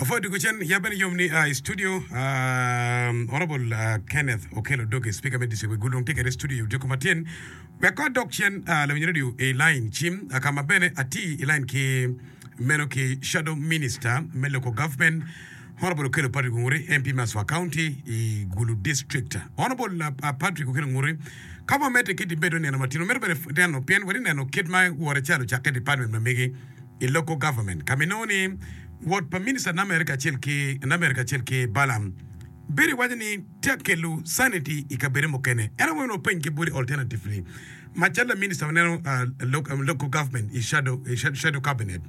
Ofwodo dwogo cen yabbe ni yom ni a i studio. Um, Honorable uh, Kenneth Okello Doge, Speaker me District Wegul dong tye kede studio i Odyeko Matyen. Wek kod dok cen uh, lawinyo redio i line cim uh, ka ma bene ati i line ki meno ki Shadow Minister me Local Government Honorable Okello Patrick Onguri, MP me Aswa County i Gulu District. Honorable uh, uh, Patrick Okello Onguri, ka wamete ki dibedo neno matino, medo bene neno pien wari neno kit ma wore calo cakke department ma megi i Local Government, ka ma inongo ni wot pa Minista Namer kacel ki Namer kacel ki Balam bedo iwaco ni tye ka kelo sanity i kabedo mukene. Ento wek onongo peny kibwoti alternatively, macalo la Minista waneno ah, lo- ah, Local Government i Shadow, i Shadow Shadow Cabinet,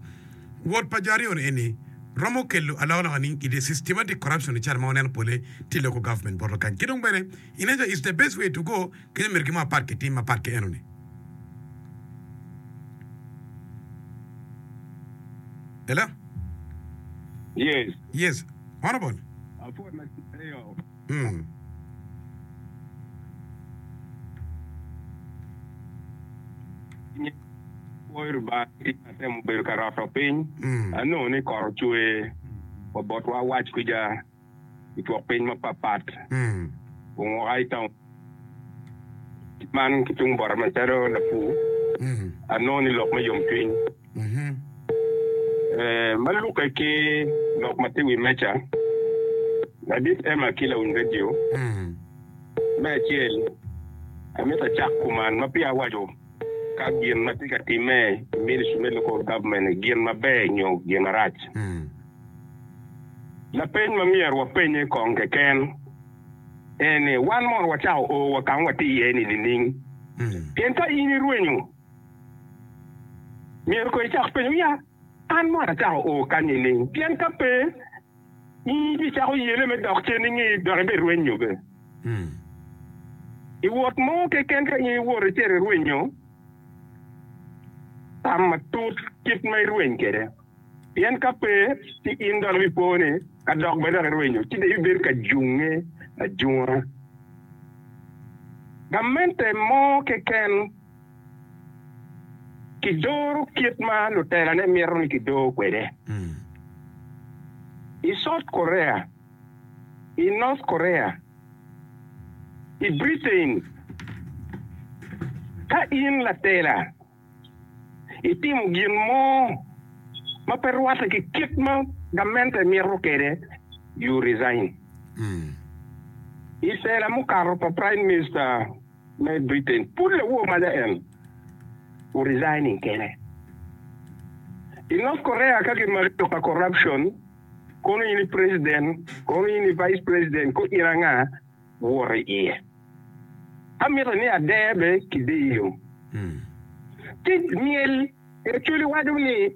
wot pa jo aryo-ni eni romo kelo alokaloka nining i the systematic corruption-ni cal ma waneno pole tye i Local Government bot Lukany. Ki dong bene, ineno calo it's the best way to go Kit miti ki mo apat ki tim mapat ki enoni. Hello? Yes. Yes. Honorable. Apod na eyo. Mm. Kwoyo Lubanga atemo bedo ka roto piny. Mm. Anongo ni kot ocwe wa botwa wac kwica. i twokpiny mapatpat ongoka i taun man ki tung bota macalo lapur, anongo ni lok me yomcwiny ma lukke ki lok ma tye i wi meja. Ladit Emma ki lawiny redio me acel, amito acak kuman ma peya awaco ka gin ma tye ka timme i ministri me Local Government gin maber nyo gin marac. Lapeny ma myero wapenye kong keken en ni, Wan mono wacako o wa ka ma watye iye-ni nining? Pien ka in irwenyo, myero kong icak penyo ni, 'An mono acako o kany nining? Pien ka pe, in ibicako yele me dok cen inge dok ibirwenyo bene. I wot mo keken ka in iwoto icito irwenyo, tam matut kit ma irweny kwede. Pien ka pe, ci in dong ibipone ka dok bene dok irwenyo, ci dong ibibedo ka junge ajunga. Gamente mo keken kidoro kit ma lutelane mito ni kidor kwede. I South Korea, i North Korea, i Britain, ka in latela, itimo gin mo ma pe rwatte ki kit ma gamente mito kwede, you resign. I tela mukato pa Prime Minister me Britain, pud lawor maja en o resigning kene. I North Korea ka gimaki lok pa corruption, kono in i President, kono in i Vice President, kor in anga? wot i iye. Amito ni ader bene ki diyo tic myel. Macoli waco ni.